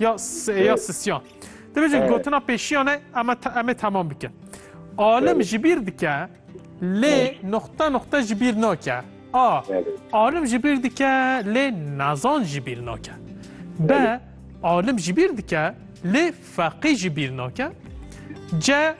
ya ya sisyan. Dibêjin gotina pêşiyane em em ê temam bikin. Alim ji bîr dike lê noxta noxta ji bîr nake. A alim ji bîr dike lê nazan ji bîr nake. B alim ji bîr dike lê feqî ji bîr nake. C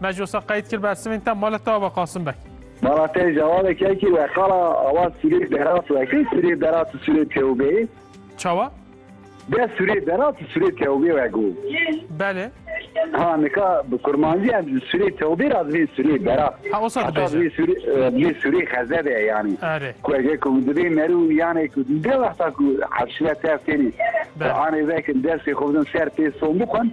Meclisa qeyd kir bersivên te mala te ava Qasim Beg. Mala te cevabek ya ki we qala ava Sûrê Berat we kê Sûrê Berat û Sûrê Tewbeyê? Çawa? De Sûrê Berat û Sûrê Tewbê we got. Belê. Ha nika bi kurmancî em ji Sûrê Tewbê ra divê Sûrê Berat. Ha o sa dibêje. Divê Sûrê divê Sûrê Xezebe yanî. Erê. Ku ege ku divê merû yanê ku de wexta ku hevşîra te tênî. Anê vekin dersê xwe bidin ser pê son bixwin.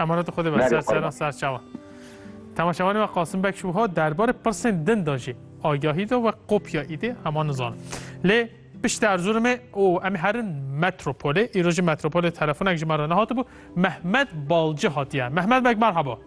Emaret xwe dibe ser sera ser çawa. Temaşevanê we Qasim Bek ji wiha derbarê pirsên din de jî agahî da we kopya îdê hema nizanin. Lê piştî Erzurumê û em herin metropolê, îro jî metropolê telefonek ji me re nehatibû, Mehmet Balci hatiye. Mehmet Bek merhaba.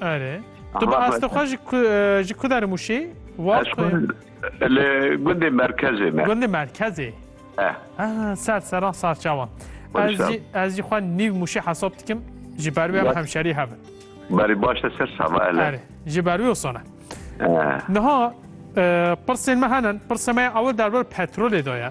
Erê. Tu bi astê xwe ji ku ji ku derim ûşî? Wak li gundê merkezê me. Gundê merkezê. Eh. Ser seran sarçawan. Ez jî ez jî xwe nîv mûşî hesab dikim ji ber wê em hemşerî hevin. Berê baş te ser sala ele. Erê. Ji ber wê sona. Niha pirsên me henin, pirsê me ew derbar petrolê de ye.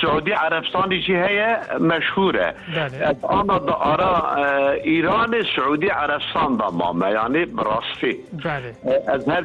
Siûdî Erebstanî jî heye meşhûr e. Ez ana di ara Îranê Siûdî Erebstan de mame yanî bi rastî. Ez her